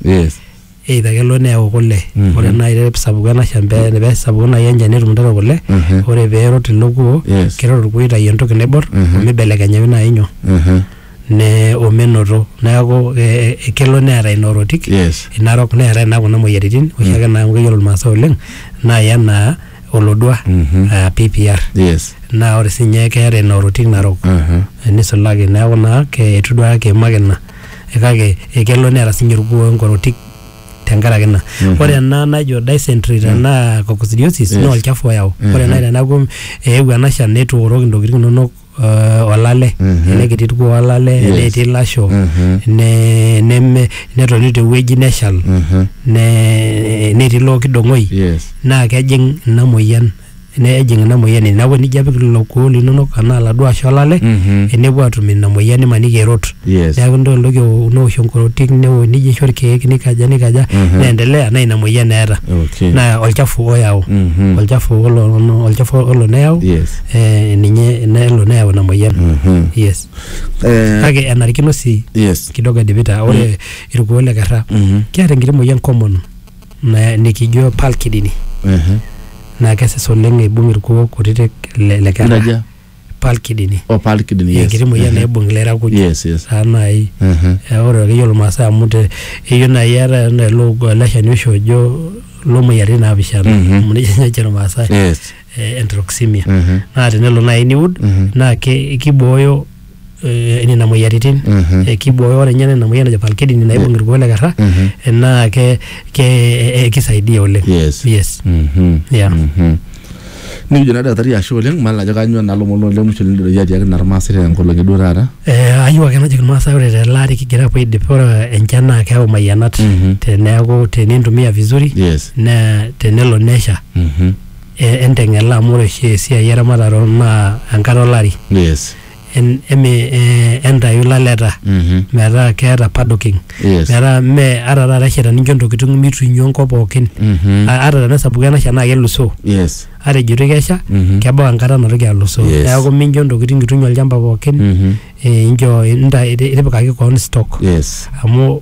Yes. either kelo neyau kule Mhm. ore naaji pee esapuku ena shamba pee esapuku naaji enchani netum intare kule Mhm. ore pee erot ilo kuo Yes. kerot orkuo aitayu entoki naibor Mhm. omibelekenyaki naaji nyoo Mhm. ne omenoto neeku eh, eh, kelo neeta ina orotik Yes. ina rok neetae naa kuna moyiaritin oshiake naa amu keyiolo irmaasai oleng naa ya naa olodua Mhm. ah, PPR Yes. naa ore sinye keeta ina orotik narok Mhm. nisulaki neeku naa ke- etu duake kiimaki ina kake ekelo neeta sinye orkuo enkorotik tenkaraki ina ore ena najo dysentery tenaa coccidiosis naa olchafu oyau ore nai teneaku eewuo ena shan netooroki intokitin inonok eh, olale ele kiti kuo olale ele etii ilasho ne- neme netoni tewueji neshal ne- netii ilo kidong'oi Yes. naa kejing ina moyian nejing ina moyian ene neeku enijo apik lelo kuoo linonok anaa laduo ashu olale Mhm. enepuo atum ina moyian imaniki erot Yes. neeku nidol entoki ewo- newosh enkorotik newo nijo aisho irkeek nikaja nikaja Mhm. neendelea naa ina moyian eeta Okay. naa olchafu oyau Mhm. olchafu olo ono- olchafu olo neyau Yes. eh, ninye nelo neyau ina moyian Mhm. yes Eh, kake enarikino sii yes. kidogo edipita ore irkuoo le kerra Mhm. keeta enkiti moyian common na- nikijo palkidini Ehe. naa kesis oleng eibung irkuo kutitik le, le kera Inaja? palkidini Oh, palkidin, yes. enkiti moyian Ehe. naibung ilera kuj Yes, yes. saa nai Ehe. Eh, ore akeyie olmaasai amu te eyieu nai eeta enaa ele ogo- ele shani oshi ojo lomoyiaritin naapishana Mhm. amu nejia ninye ejo ilmaasai Yes. eh, enteroxemia Ehe. naa tenelo nai niud Ehe. naa ke- kibooyo eh, nena moyiaritin Mhm. Eh, kibooyo ore ninye nena moyian najo palkedini naibung irkuo le kerra Mhm. eh, naa ke, ke eh, kisaidia oleng Yes. yes. Mhm. Yeah. Mhm. nikijo naa daktari ashe oleng mal ajo kanyoo naa lomon loo lemusho lindiroyie atiaki naa irmaasai tena nkolong'i duo taata Eh, ayieu ake najoki irmaasai ore tele ari kigira apuo aidip ore enchan naa keyau mayianat Mhm. teneeku tenintumia vizuri yes naa tenelo nesha Mhm. eh, enteng'ela amu ore oshi esiai eramatare naa enkata olari yes en- eme eh, entayu laleta metaa keeta paddocking Yes. metaa mme ata taata esha tenincho ntokitin mitu inyo enkop pookin Mhm. A- ata tenesapuku enasha naa kelusoo yes ata ejito kesha Mhm. kebau enkata natoki alusoo Yes. neeku mincho ntokitin itu inyo olchamba pookin Mhm. eh, incho inta- itipikaki koon stock yes amu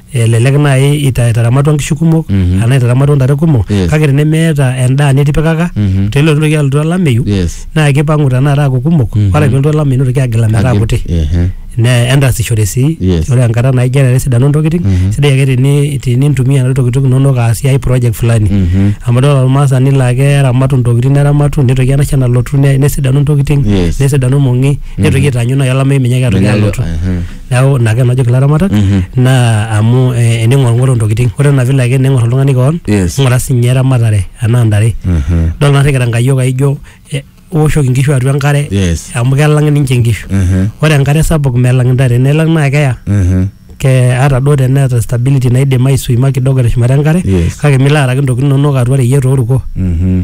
elelek naaji ita- itaramatua nkishu kumok Mhm. anaa itaramatua ntare kumok Yes. kake tenemeeta endaa nitipikaka Mhm. tenelotu ntoki alotu olameyu yes naa kipang'u tenakata aaku kumok Mhm. ore pelotu olameyu nitoki agila metaa kuti Ehe. ne entasishore sii Yes. ore enkata naijo ena nesidanu ntokitin Mhm. sidai ake teni- tenintumia nena tokitin inonok aasie ai project fulani Mhm. amu idol olmaasani laa keramatu ntokitin neramatu nitoki enasha nalotu ne- nesidanu ntokitin Yes. nesidanu mong'i nitoki aitaanyu nai olameyu menyaki atoki Menyaki- alotu Ehe. neeku ina ake najoki ilaramatak naa amu eh, ening'orung'oro intokiting ore ena vile ake ning'or oltung'ani koon Yes. ng'ura sinye eramatare anaa ntare dol narrikita nkayiok aijo eh, owoshoki inkishu atua enkare Yes. amu kelang ninche inkishu Mhm. ore enkare sapuk melang intare nelang naa keya Mhm. ke ata duo teneeta stability naidim aisuima kidogo teshumata enkare Yes. kake milo araki intokitin inonok atua reyiet oruko Mhm.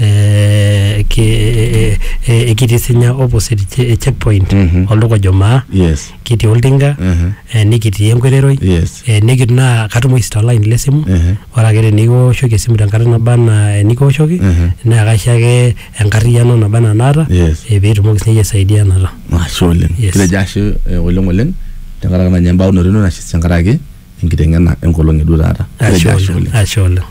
eh, ki- eh, eh, eh, kitii sinya opposite che- checkpoint Mhm. olduka ojo maa yes kitii oltinga Mhm. eh, nikitii enkoiteroi yes eh, nikitii naa katumoki sii tolaini le simu Mhm. ore ake tenikiwoshoki esimu tenkata naba anaa enikiwoshoki Mhm. naa kaisho ake enkarriyiano naba anaa naata Yes. eh, piitumoki sininye aisaidianata ashe oleng Yes. kitejo ashe eh, oleng oleng tenkaraki nanya embaunoto ino nashe tenkaraki enkiteng'ena enkolong eduo taata Kitejo ashe oleng ashe oleng